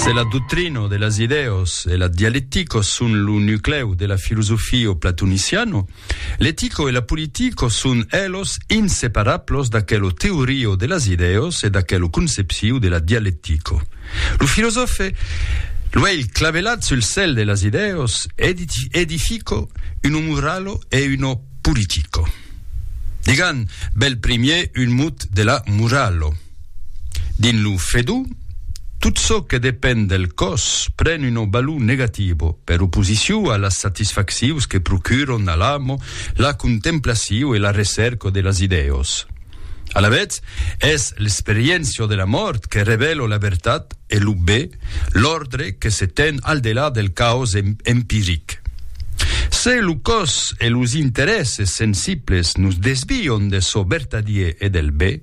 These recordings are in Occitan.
Se la doctrina de las idèas e la dialectica son lo nuclèu de la filosofia platoniciana, l'etica e la politica son elos inseparablos d'aquela teoria de las idèas e d'aquela concepcion de la dialectica. Lo filosòfe, luèlh clavelat sul cèl de las idèas, edifica una morala e una politica. Digam bèl primièr un mot de la morala. Dins lo Fedú, tot çò que depend del còs pren una valor negativa, per oposicion a las satisfaccions que procuran a l'amo la contemplacion e la recèrca de las idèas. Alavetz, es l'experiéncia de la mòrt que revèla la vertat e lo be, l'òrdre que se ten al delà del caos empiric. Se lo còs e los interèsses sensibles nos desvian de çò vertadier e del be,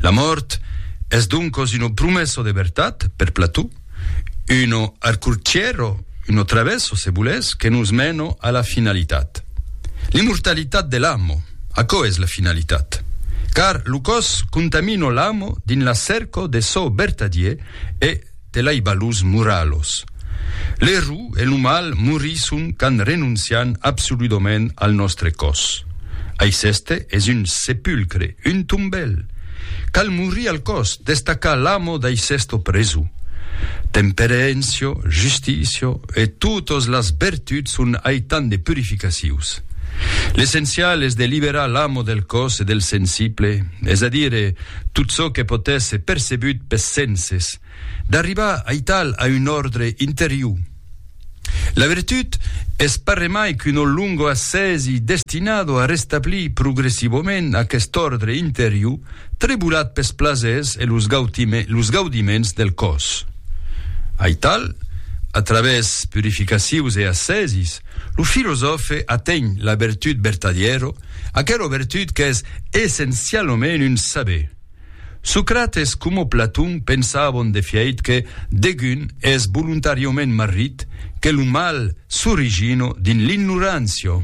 La mòrt es doncos uno promesso de vertat per Plató, uno arcurchiero, uno travesso, se volètz, que nos meno a la finalitat. L'immortalitat de l'amo, aquò es la finalitat. Car lo còs contamino l'amo dins la cerco de çò vertadier e, de l'aibalus muralhos. Lerru e lo mal morisson qu'an renoncian absoludament al nòstre còs. Aiceste es un sepulcre, un tombèl. Cal morir al còs, destacar l'amo d'aicesto presu. Temperencio, justicio e totos las bertuts son aitan de purificacius. L'essencial es de liberar l'amo del còs e del sensible, es a dire, Tot çò que pòt èsser percebut pes senses, d'arribar aital a un òrdre interior. La virtut es parremai qu'un ò longo assèsi destinado a restablir progressivament aquest òrdre interior trebolat pes plasers e los gaudiments del còs. Aital, a travèrs purificacions e assèsis, lo filosòfe aténh la virtut vertadièro, Aquela vertut qu'es essencialament un saber. Socrates coma Platon pensavon de fièit que degun es volontàriament marrit, que lo mal s'origina dins l'ignorància.